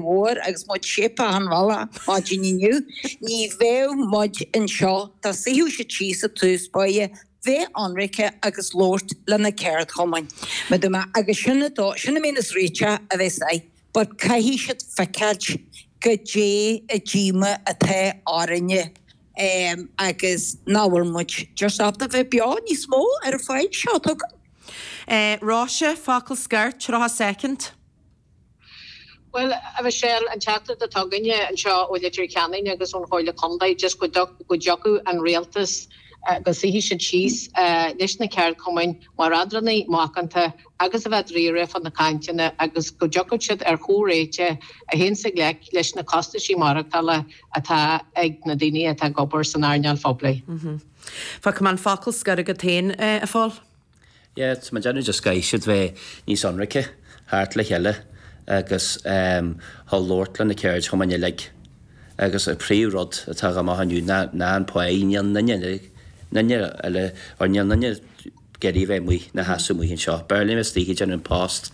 Mhóir agus muid séidte an bhalla maidin inniu, ní bheadh muid anseo dá suífeadh siad síos ag tús báire, bheith ionraice agus labhairt le na ceardchumainn, me do me, agus sin an dóigh, sin a mbíonn is réiteach a bheith aige, but caithfidh siad feiceáilt goidé an díomá atá orainne em agus nach bhfuil muid just ábalta bheith beo níos mó ar an pháighe seo. Tuigim. Eh, Róise, focal scoir, tríocha soicind. Bhuel, a Mhichelle, an teachtaireacht atá againne anseo ó Leitir Ceanainn agus ón Chomhairle Contae just go go dtiocfadh an Rialtas, go suífeadh siad síos leis na ceardchumainn mar eadránaí macánta agus a bheith dáiríre fá na cainteanna agus go dtiocfadh siad ar chomhréiteach a théanns i ngleic leis na costaisí maireachtála atá ag na daoine atá ag obair san earnáil phoiblí. Fágfaidh mé an focal scoir agat féin, a Phóil. Yes, tá mé ag déanamh go gcaithfidh siad bheith níos ionraice theacht le chéile agus a labhairt le na ceardchumainn uilig agus an príomhrud atá againn inniu ná an pháighe níl duine duine eile or níl duine ag iarraidh a bheith amuigh ina sheasamh amuigh anseo. B'fhearr linn a bheith istigh ag déanamh an post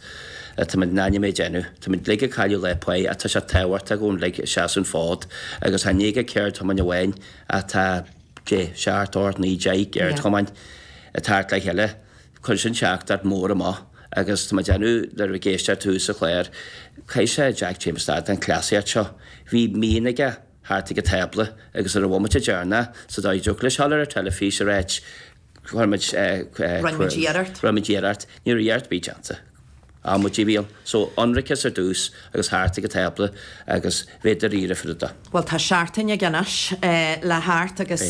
tá muid in ainm é a dhéanamh tá muid uilig ag cailleadh lá páighe ach tá sé tábhachtach dúinn uilig a seasamh an fód agus chan é aon cheardchumann amháin ach tá tá sé thart ar 19 ceardchumann ag teacht le chéile, cuireann sin teachtaireacht mór amach agus tá mé ag déanamh nuair a bhí mé ag éisteacht ar tús an chláir, caithfidh Jack Chambers stad an cleasaíocht seo, bhí mian aige theacht ag an tábla agus ar an bhomaite deireanach sa dóigh dtiocfadh leis dul ar an teilifís a ráit go rinn muid, rinn muid iarracht. Rinn muid iarracht. Ní raibh iarracht ar bith déanta. Amaidí a bhí ann. So, ionraiceas ar dtús agus theacht ag an tábla agus bheith dáiríre faoi rudaí. Bhuel, tá seachtain acu anois le theacht agus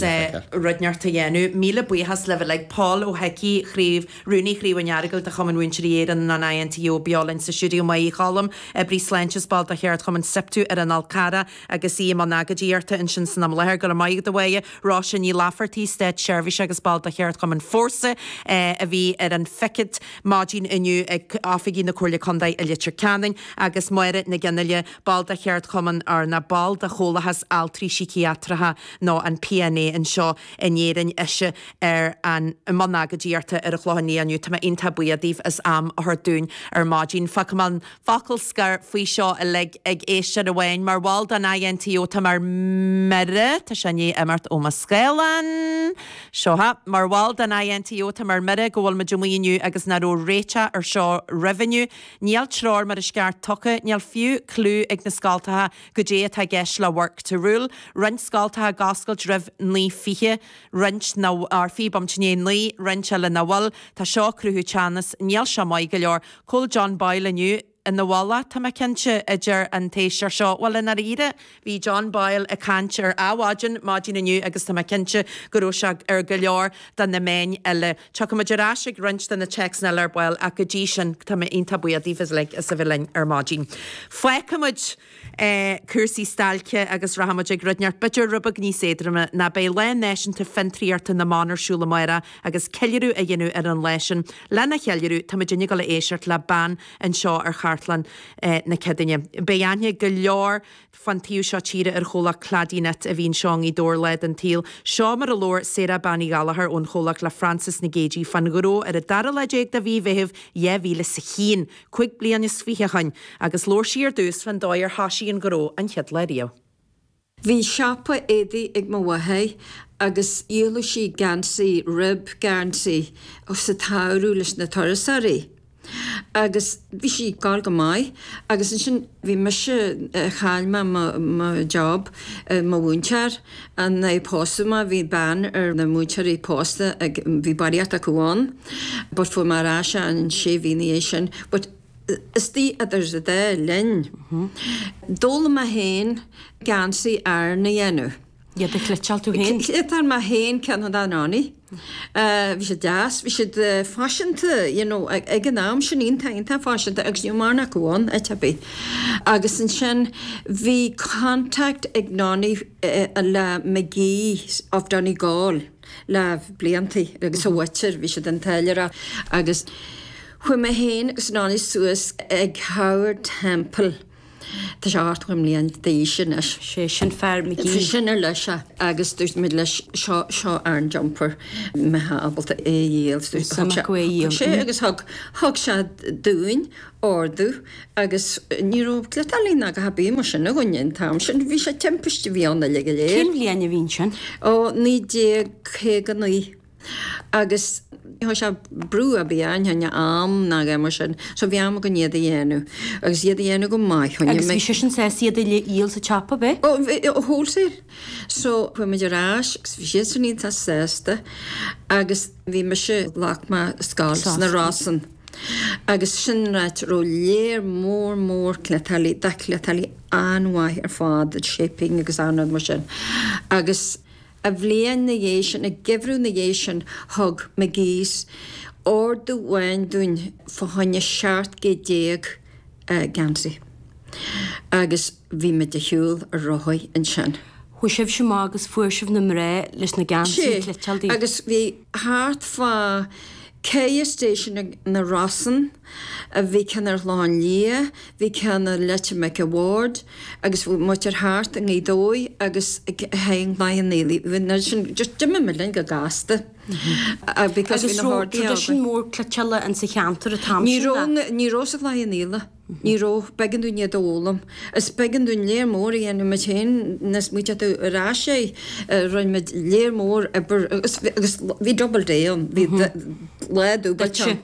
rud inteacht a dhéanamh. Míle buíochas libh uilig. Pól Ó hIcí, Craobh, Rúnaí Chraobh an Earagail de Chumann Mhúinteoirí Éireann, an INTO, beo linn sa stiúideo, Maedhbh Ní Choilm, Oibrí Sláinte is ball de Cheardchumann Siptu ar an Fhál Carrach, Agus í i mbun agóidíochta ansin san am i láthair, go raibh maith agat, a Mháire. Róise Ní Laifeartaigh, Státseirbhíseach agus ball de Cheardchumann Fórsa, a bhí ar an phicilt maidin inniu ag oifigí na Comhairle Contae i Leitir Ceanainn, agus Máire Nic Fhionnghaile, ball de Cheardchumann Fhearna, ball de Chomhlathas Altraí Síciatracha nó an PNA anseo in Éirinn, ise ar an i mbun agóidíochta ar an Chlochán Liath inniu. Tá mé iontach buíoch díobh as am a thabhairt dúinn ar maidin. Fágfaidh mé an focal scoir faoi seo uilig ag éisteoir amháin, mar bhall den INTO, táim ar mire, tá sé i ndiaidh imeacht ó mo scáileán, seo é, mar bhall den INTO, táim ar mire go bhfuilimid amuigh inniu agus nach raibh réiteach ar seo roimh inniu, níl treoir mar is gceart tugtha, níl fiú cliú ag na scoltacha goidé atá i gceist le work to rule, roinnt scoltacha ag oscailt roimh 9:20, roinnt nach, ar fiche bomaite i ndiaidh 9, roinnt eile nach bhfuil, tá seo ag cruthú teannas, níl seo maith go leor. Chuala John Boyle inniu ina mhála, tá mé cinnte, a deir an t-éisteoir seo. Bhuel, i ndáiríre, bhí John Boyle ag caint ar Adhmhaidin maidin inniu agus tá mé cinnte go raibh sé ar go leor de na meáin eile. Tiocfaidh muid ar ais ag roinnt de na téacsanna eile ar ball ach go dtí sin, tá mé iontach buíoch díbh uilig as a bheith linn ar maidin. Fágfaimid cúrsaí stailce agus rachaidh muid ag rud inteacht b'fhéidir rud beag níos éadroime nó beidh Lá Náisiúnta Fiontraíochta na mBan ar siúl amárach agus ceiliúradh á dhéanamh ar an lá sin. Lena cheiliúradh, táimid ag gabháil a éisteacht le bean anseo ar Chartlann na Céadaoine. Beidh aithne ag go leor fán taobh seo tíre ar chomhlacht Cladyknit a bhí anseo i nGaoth Dobhair lá den tsaol. Seo mar a labhair Sarah Bean Uí Ghallachair ón chomhlacht le Frances Nic Géadaigh fán ghnó ar an dara lá déag de mhí Mheithimh 2001. cúig bliana is fiche ó shin, agus labhair sí ar dtús fán dóigh ar thoisigh an gnó an chéad lá riamh. Bhí siopa éadaigh ag mo mháthair agus dhíoladh sí geansaí, rib geansaí, sa tsamhradh leis na turasóirí. Agus bhí sí ag gabháil go maith agus ansin bhí mise, chaill mé mo job, mar mhúinteoir, nuair a pósadh mé bhí ban ar na múinteoirí pósta ag, bhí barraíocht acu ann but fuair mé ar ais é an sé mhí ina dhiaidh sin but is dóigh idir an dá linn d'fhoghlaim mé féin geansaí Árann a dhéanamh. Iad a chleiteáil tú féin? Chleiteáil mé féin ceann amháin. Bhí siad deas, bhí siad faiseanta you know ag an am sin, iontach, iontach faiseanta agus ní raibh mórán acu ann, a Tibby. Agus ansin bhí contact ag Nonny le Magee's of Donegal le bliantaí agus a mhuintir, bhí siad ag táilliúireacht agus chuaigh mé féin agus Nonny suas ag Howard Temple, Tá sé ochtó bliain d'aois anois. Sé sin fear Magee. B'eisean ar leis é agus dúirt muid leis seo, seo Aran jumper, an mbeitheá ábalta é a dhíol. Thug sé, thug sé agus thug, thug sé dúinn ordú agus ní raibh cleiteálaí ná a dhath ar bith mar sin againn an t-am sin, bhí sé, timpiste a bhí ann uilig go léir. Cén bhliain a bhí ansin? Ó, naoi déag caoga naoi. Agus cha raibh sé brú ar bith orainn fá choinne am ná a dhath mar sin, so bhí am againn iad a dhéanamh, agus iad a dhéanamh go maith, choinnigh mé. Agus bhí seisean sásta iad uile a dhíol sa tsiopa, ab ea? Ó, wholesale. So, chuaigh muid ar ais, agus bhí siadsan iontach sásta, agus bhí mise, ghlac mé scoil sna Rosann. Agus sin áit a raibh lear mór mór cleiteálaithe, cleiteálaithe an-mhaith ar fad, shaping agus achan rud mar sin, agus. An bhliain 'na dhiaidh sin, an geimhreadh 'na dhiaidh sin, thug Magee's ordú amháin dúinn fá choinne seacht gcéad déag geansaí agus bhí muid ar shiúl ar rothaí ansin. Chuaigh sibhse amach agus fuair sibh na mná leis na geansaí a chleiteáil daoibh? Sea, agus bhí thart fá chéad istigh ins na Rosann. Bhí ceann ar an Chlochán Liath, bhí ceann ar Leitir Mhic a' Bhaird agus bhí muintir thart i nGaoth Dobhair agus i gCloich Cheann Fhaola. D'imigh muid linn go gasta because bhí na horduithe againn. Agus raibh tradition mór cleiteála in sa cheantar an t-am sin, a? Ní raibh sa Chloich Cheann Fhaola, ní raibh. B'éigean dúinn iad a fhoghlaim. Is b'éigean dúinn léar mór a dhéanamh muid féin, níos moite atá ar ais é, rinne muid léar mór oibre agus bhí double day ann, bhí lá dubh ann.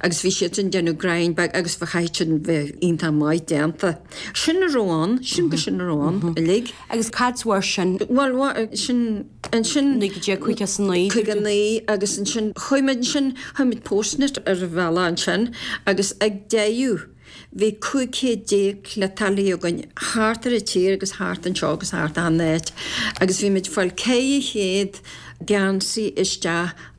agus bhí siadsan ag déanamh greim beag agus bhí, chaithfeadh siad bheith iontach maith déanta. Sin a raibh ann, sin go sin a raibh ann uilig. Agus cad sa bharr sin? Bhuel, sin, ansin. 1959. 59 agus ansin chuaigh muid ansin, chuaigh muid Portsmouth ar an bhealach ansin agus ag deireadh bhí cúig chéad déag cleiteálaí againn thart ar an tír agus thart anseo agus thart achan áit agus bhí muid ag fáil ceithre chéad geansaí isteach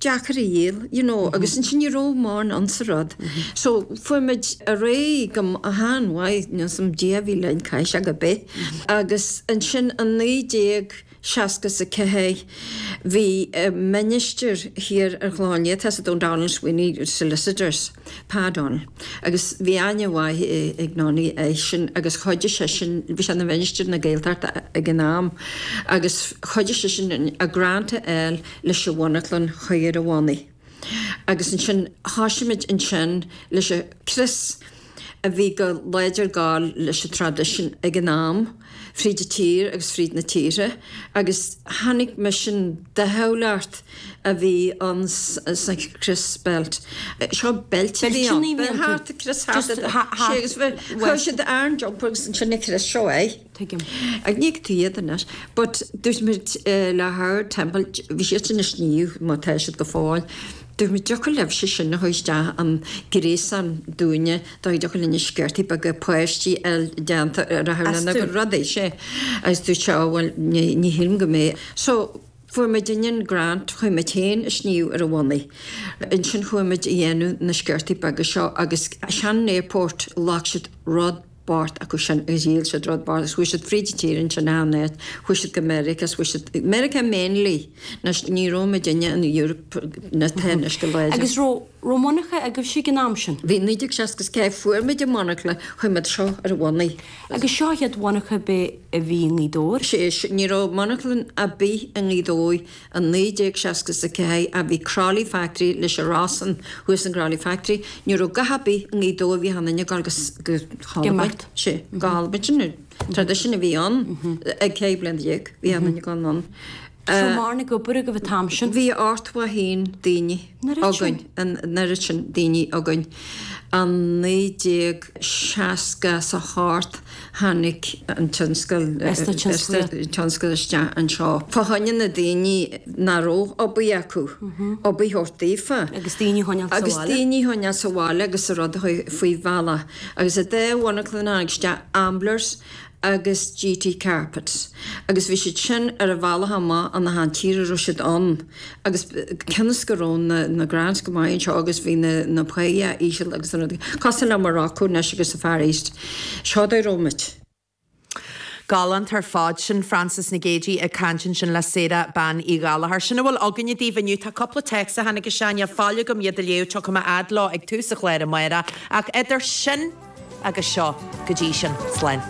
deacair a dhíol, you know, agus ansin ní raibh mórán ann sa rud. So, fuair muid ar aghaidh go han-mhaith, nó some deich mhíle i gcás ar bith, agus ansin i naoi déag seasca is a ceathair bhí ministir thiar ar an Chlochán Liath, tá sé ann, O'Donnell Sweeney Solicitors, Pa Donnell, agus bhí aithne mhaith ag Nonny air sin agus chuidigh seisean, bhí sé ina mhinistir na Gaeltachta ag an am, agus chuidigh seisean a grant a fháil leis an mhonarchlann a chur ar a bhonnaí agus ansin thoisigh muid ansin leis an chrios a bhí go láidir ag gabháil leis an traidisiún ag an am fríd an tír agus fríd na tíortha agus tháinig misean de chomhlacht a bhí ann sa chrios beilt, seo beilt a bhí ann, thart, crios thart, sé agus bhí, chuir siad ar an jumper agus ansin an crios seo é. Tuigim. Chan fheiceann tú iad anois. But dúirt muid le Howard Temple, bhí siad sin ag sníomh, mar tá siad go fóill, dúirt muid dtiocfadh libhse sin a thabhairt isteach an gréasán dúinne, dtiocfadh linne sciortaí beaga páistí a dhéanamh a rachadh lena gcuid rudaí, see. Agus dúirt sé, oh well, ní shílim go mbeidh. So fuair muidinne an grant, chuir muid féin an sníomh ar a bhonnaí. Ansin chuaigh muid a dhéanamh na sciortaí beaga seo agus Shannon Airport, ghlac siad rud, bpáirt acu sin dhíol siad thar barr, is chuaigh siad fríd an tír ansin, a Anette, chuaigh siad go Meiriceá is chuaigh siad, Meiriceá mainly, nois ní raibh muidinne in Europe mar atá anois go láidir. Agus raibh, raibh monarcha agaibhse ag an am sin? Bhí, naoi déag seasca is ceathair fuair muid an monarchla, chuir muid seo ar a bhonnaí. Agus seo an chéad mhonarcha ar bith a bhí i nGaoth Dobhair? Sé, sé, ní raibh monarchlann a' bith i nGaoth Dobhair. I 1964 a bhí Crolly Factory leis a rá san thuas an Crolly Factory, ní raibh dath a' bith i nGaoth Dobhair bhí achan duine ag gabháil go hAlbain, sé, go hAlbain, sin an tradition a bhí ann ag ceithre bliana déag, bhí achan duine ag gabháil anonn. An raibh mórán ag obair agaibh an t-am sin. Bhí a Art mhaith fhéin daoine. againn, an oiread sin daoine againn. I 1960 is a hocht tháinig an tionscal isteach anseo. Fá choinne na daoine nach raibh obair acu, obair a thabhairt daofa. Agus daoine a choinneáil sa bhaile agus an rud faoi bhealach. Agus i dtaca le bunachlann tháinig isteach amblers, agus GT Carpets agus bhí siad sin ar a bhealach amach as an tír a raibh siad ann agus cionn is go raibh na Grants go maith anseo agus bhí na na páigheanna íseal agus cosúil le Morocco anois agus sa Far East seo dá raibh muid. Galánta ar fad sin Frances Nic Géadaigh ag caint ansin le Sarah Bean Uí Ghallachóir. Sin a bhfuil againne daoibh inniu. Tá cúpla téacs a tháinig isteach, níl faill agam iad a léamh, tiocfaidh mé a fhad leo ag tús an chláir amárach. Ach idir sin agus seo, go dtí sin, slán.